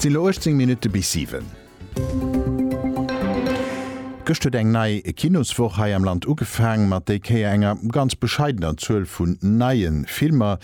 Et sinn elo 18 Minutte bis 7. Gëscht huet eng nei Kinoswoch hei am Land ugefaang, mat déi Kéier enger ganz bescheidener Zuel vun neie Filmer.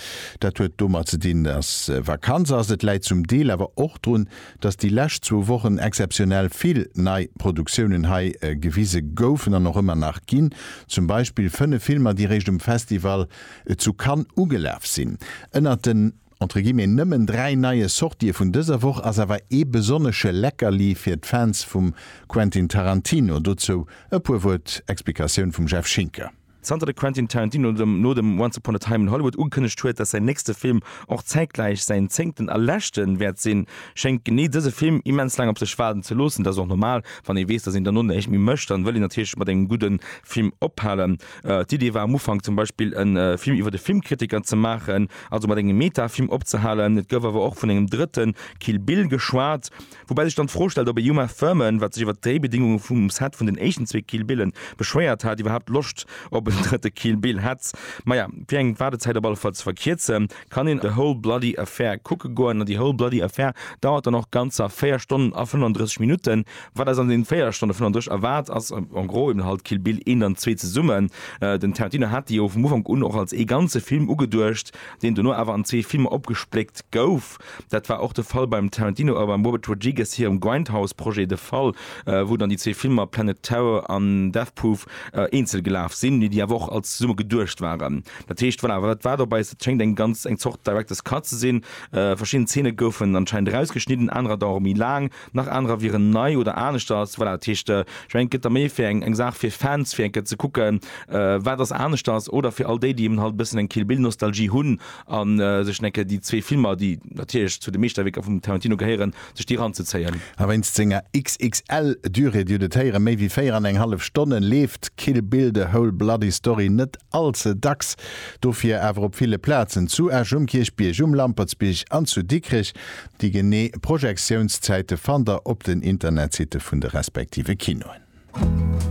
Dat huet domat ze dinn, dass Vakanz ass. Et läit zum Deel awer och drun, dass déi lescht zwou Wochen exzeptionell vill nei Produktiounen hei gewise goufen an och ëmmer nach ginn. Zum Beispill 5 Filmer, déi réischt um Festival zu Cannes ugelaf sinn. Ënnert den. Entre guillemets nëmmen dräi neie Sortië vun dëser Woch ass awer ee besonnesche Leckerli fir d'Fans vum Quentin Tarantino. Dozou e puer Wuert Explikatioun vum Jeff Schinker. Zanter de Quentin Tarantino no dem Once Upon a Time in Hollywood ugekënnegt huet, datt säin nächste Film och zäitgläich säin zéngten a leschte wäert sinn, schéngt genee dëse Film immens laang op sech waarden ze loossen. Dat ass och normal, wann ee weess, datt een dono näischt méi mécht, dann wëll een natierlech mat engem gudde Film ophalen. D'Idee war am Ufank zum Beispill e Film iwwer e Filmkritiker ze maachen, also mat engem Meta-Film opzehalen. Et gouf awer och vun engem drëtte Kill Bill geschwat. Woubäi sech dann d'Fro stellt, ob e Uma Thurman, wat sech iwwer d'Dréibedingunge vum Set vun den éischten zwee Kill Bille beschwéiert hat, iwwerhaapt Loscht op en drëtte Kill Bill hätt. Maja, fir eng Waardezäit op alle Fall ze verkierzen, kann een The Whole Bloody Affair kucke goen. An déi Whole Bloody Affair dauert dann och ganzer 4 Stonnen a 35 Minutten. Wat eis an den 4 Stonnen vun an duerch erwaart ass en gros eben halt Kill Bill 1 an 2 zesummen. Den Tarantino hat déi jo vum Ufank un och als ee ganze Film ugeduecht, deen dono awer an zwee Filmer opgespléckt gouf. Dat war och de Fall beim Tarantino a beim Robert Rodriguez hirem Grindhouse Projet de Fall, wou dann déi zwee Filmer Planet Terror an Death Proof eenzel gelaf sinn, mee déi awer och als zesumme geduecht waren. Dat heescht, voilà, wat war dobäi? Et schéngt eng ganz eng Zort Director's Cut ze sinn. Verschidden Zeene goufen anscheinend erausgeschnidden, anerer dauere méi laang. Nach anerer wieren nei oder aneschters. Voilà, dat heescht, ech mengen, et gëtt da méi fir eng Saach fir Fans, fir eng Kéier ze kucken, wat ass aneschters, oder fir all déi, déi eben halt e bëssen eng Kill Bill Nostalgie hunn a sech dann eng Kéier déi zwee Filmer, déi natierlech zu de Meeschterwierker vum Tarantino gehéieren, sech déi eranzezéien. A wéinst senger XXL Durée, Dir hutt et héieren, méi wéi véier an eng hallef Stonnen, leeft Kill Bill, The Whole Bloody Story net all ze dacks. Dofir awer op ville Plazen, zu Esch um Kierchbierg, um Lampertsbierg an zu Dikrech, Déi genee Projektiounszäite fannt der op den Internetsitte vun de respektive Kinoen.